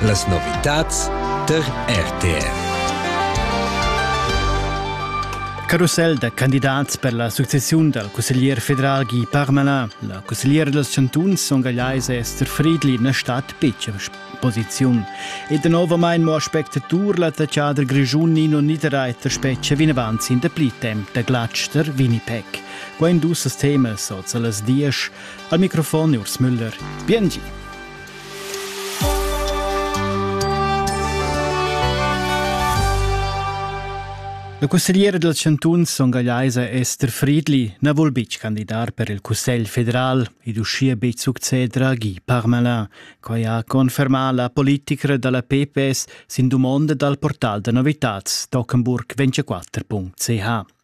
Las novitads tar RTR. Carossel da candidats per la successiun dal cusseglier federal Guy Parmelin. La cussegliera dals chantuns songaiais Esther Friedli na stat betg en posiziun. E danovamain mo spectatur l'attaccader grischun Nino Niederreiter spetga vinavant sin dapli temp da glatsch tar Winnipeg. Quai en dus temas oz a las dies. Al microfon Urs Müller. Biengi. La cussegliera dal chantun Son Gallaisa Esther Friedli na vul betg candidar per il Cussegl federal ed uschia betg succeder a Guy Parmelin. Quai ha confermà la politica da la PPS sin dumonda dal portal da novitads Tockenburg 24.ch.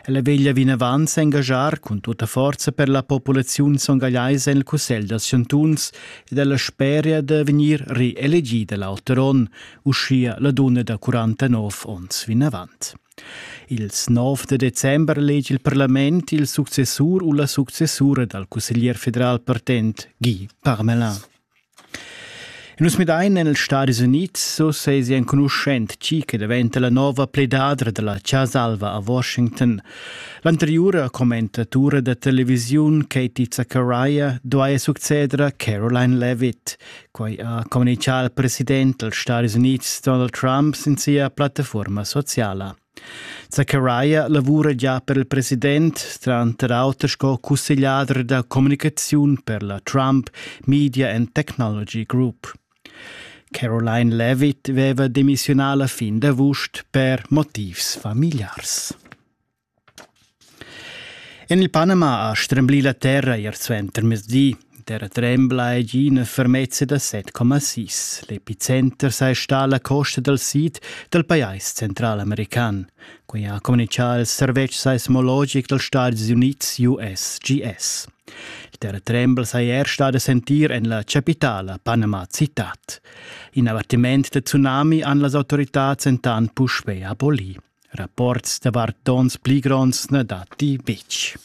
Ella veglia vinavant s'engaschar cun tutta forza per la populaziun songagliaisa en il Cussegl dals chantuns ed ella speria da vegnir reelegida l'auter onn, uschia la dunna da 49 onns vinavant. Ils 9 de december lege il parlament il successur u la successura dal cusseglier federal partent Guy Parmelin. Nus midain en ils Stadis Unids so sesi enconuschent tgi che daventa la nova pledadra dalla Casa Alva a Washington. L'anteriura commentatura da televisiun Katie Zachariah duaja succeder a Caroline Levitt. Quai ha communicà il president dals Stadis Unids Donald Trump sin sia plattaforma sociala. Zachariah lavura gia per il president, tranter auter sco cussegliader da communicaziun per la Trump Media and Technology Group. Caroline Levitt veva demissionà la fin d'avust per motivs familiars. En il Panama ha stremblì la terra ier suentermezzdi. Terra trembla ed ina fermezza da 7,6. L'epicenter sa sta alla costa dal sid dal pajais centralamerican. Quai ha communichà il servetsch seismologic dals Stati Unids USGS. Il terratrembel sei er stada sentir en la capitala Panama Citat. In avvertiment da tsunami han las autorità entant puspè abolì. Rapports davart tons pli gronds na datti betg.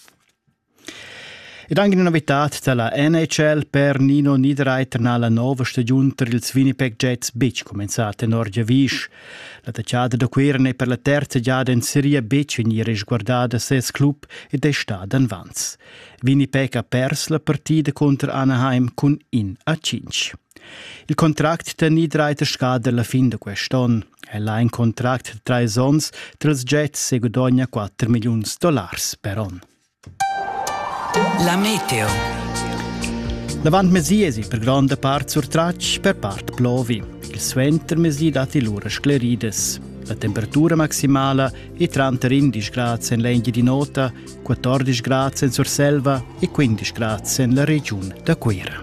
Ed anche una novità dalla NHL per Nino Niederreiter na la nova stagiun tar ils Winnipeg Jets betg cumenzà tenor giavisch. La tachada da Cuira n'è per la terza giada en seria betg vegnì resguardada ses club ed è stada envans. Winnipeg ha pers la partida contro Anaheim cun in a cinc. Il contract da Niederreiter scada la fin da quest'onn. El ha in contract da trais onns tras jets e gudogna quatter milliuns dollars per onn. La meteo. L'avantmezì es per gronda part surtratg per part plovi. Il suentermezì datti lura scleridas. La temperatura maximala è tranter 11 grad en l'Engia di Nota, 14 grad en Surselva e 15 grad en la regiun da Cuira.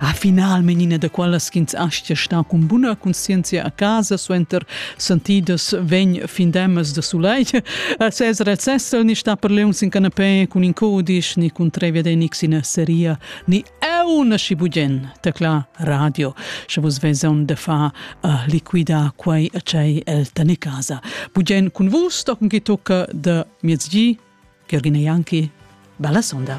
A final menina da quellas ch'ins aschia sta cun buna conscienzia a casa suenter sentidas vegn findemas da sulei. Ses recess ni sta per leons in canapé cun in codisch ni cun tre viadenics in seria ni eu na si bugen tecla radio sche vus veson de fa uh, liquida quei cei el tane casa bugen cun vus tochen che tocca de miezgi Gergina Janki bella sonda